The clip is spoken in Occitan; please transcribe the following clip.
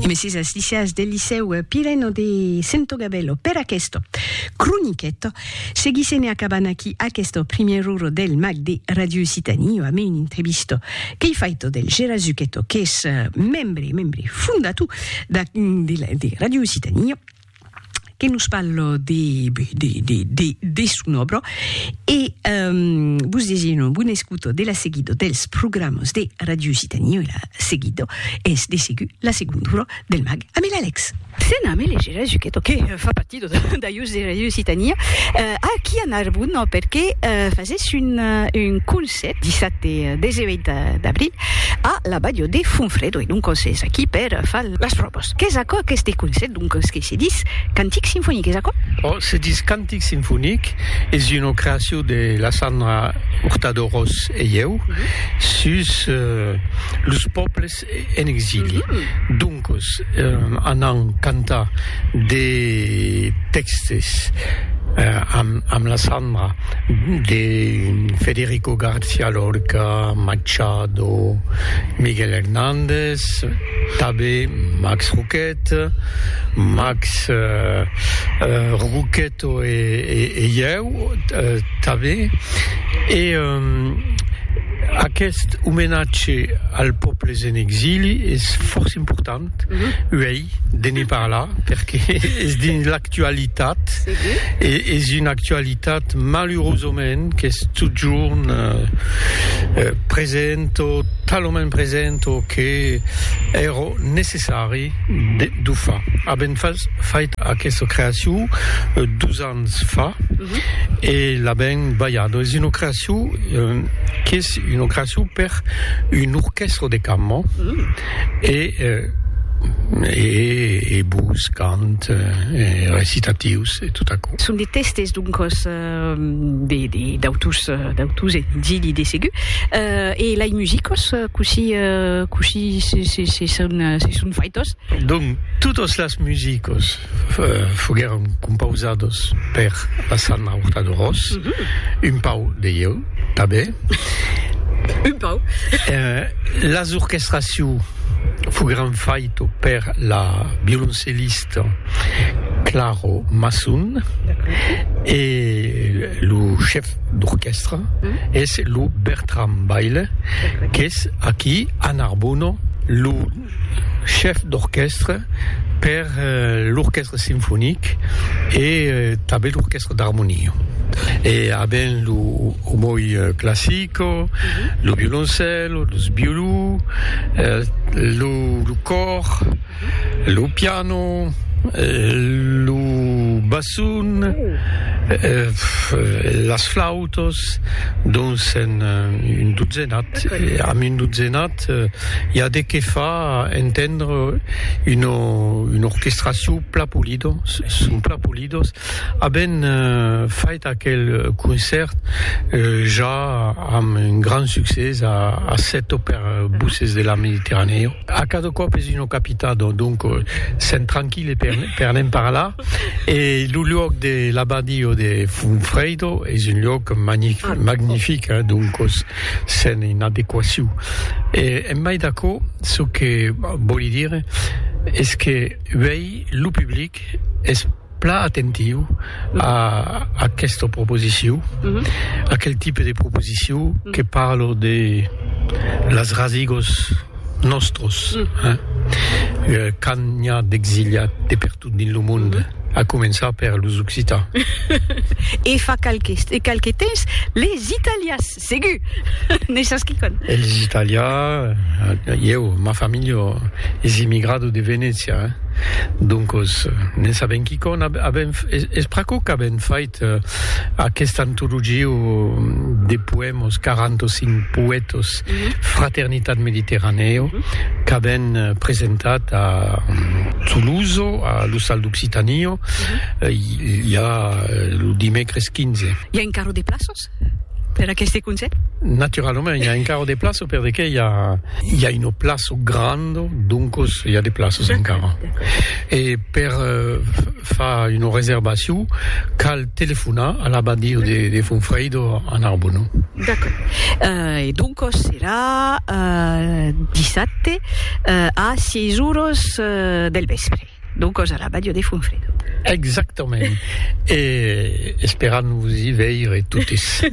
Mès es licièrs del licèu Pireno de Sentogabello per aqueste croniquet. Seguissem e acabam aquí aqueste primièr ora del mag de Ràdio Occitanie amb un entrevista qu'ei faito del Gérard Zucchetto qu'es membre, membre fondator de Ràdio Occitanie. que nos parlo de, de, de, de, de son obra e um, vos desino bon escuto de la seguida dels programas de Radio Occitanie e la seguida es de segur la segunda hora del mag amb l'Alex. Sena me legera Zuchetto que eh, fa partit d'aius de Radio Occitanie eh, aquí a Narbona perque eh, fases un, eh, un cons sèt, dissabte e 18 d'abril a la balhò de Fonfredo e doncas es aquí per far las pròvas. Qu'es aquò aqueste concèrt doncas que se dis cantic sinfonic, es aquò? Ò, se dis cantic sinfonic, es una creacion de la Sandra Hurtado Ros e ieu sus los pòbles en exili, doncos anam cantar de tèxtes amb la Sandra de Federico García Lorca, Machado, Miguel Hernández, tanben Max Roquette, Max Roquette. Tò e ieu tanben. E aqueste omenatge als pòbles en exili es fòrça important uèi de ne parlar perque es dins l'actualitat e es una actualitat malurosament qu'es totjorn present o talament present o que èra necessari De Dufa, avèm fas fait aquesta creacion dus ans fa e l'avèm balhada. Es una creacion qu'es una creacion per un orquèstra de cambra e e e vos cant e recitatius e tot aquò. Son de tèstes, doncas. de d'autus d'autus e dili de segur e lai musicos cosi cosi se se se son se son faitos donc totos las musicos foguèron compausados per la sanna horta de ros un pau de ieu tanben un pau las orchestraciu foguèron faito per la violoncellista Claro Masson e lo chef d'orquèstra es lo Bertram Baile qu'es aquí a Narbona lo chef d'orquèstra per l'orquèstra sinfonic e tanben l'orquèstra d'armonia e a ben lo omoi classico lo violoncèlo los violons lo còr Lo piano, lo basson, las flautas, donc sèn un dotzenat, amb un dotzenat i a de qué far entendre una una orchestracion plan polida, son plan polidas, avèn fait aquel concèrt ja amb un grand succès a Sèto per Voces de la Mediterranèo. A cada còp es una capitat, donc sèm tranquille per ne'n parlar. E lo luòc de l'abadio de Funfredo es un luòc magnific, donc sèm en adequacion. E en mai d'aquò, çò que vòli dire es que uèi lo public es. Plan atentiu a aquesta proposiciu, aquel tipe de proposiciu que parlo de las rasigos nòstros, quand n'i a d'exiliat de pertot dins lo monde, a començar per los occitans. E fa qualques temps, les italians. Segur! Ne sas quicòm. Eles italià, ieu, ma familha es immigrado de Venècia, doncos ne sabem quicòm. Avem, es pr'aquò qu'avem fait aquesta antologia de poèmas, 45 poètas, Fraternitat Mediterranèo, qu'avem presentat a Toulouse, a l'Ostal d'Occitània, ja lo dimècres 15. I a encara de plaças? per aqueste conselh? Naturalament, i a encara de plaço per de que i a, i a un plaço grand, doncos i a de plaços encara. E per uh, fa una reservacion, cal telefonar a l'abadio de, de Fonfreido a Narbonne. D'accord. Uh, e doncos serà uh, dissabte uh, a 6 horas uh, del vespre. D'o còs a la Bàdia de Fonfredo. Exactament. E esperam vos i veire totes.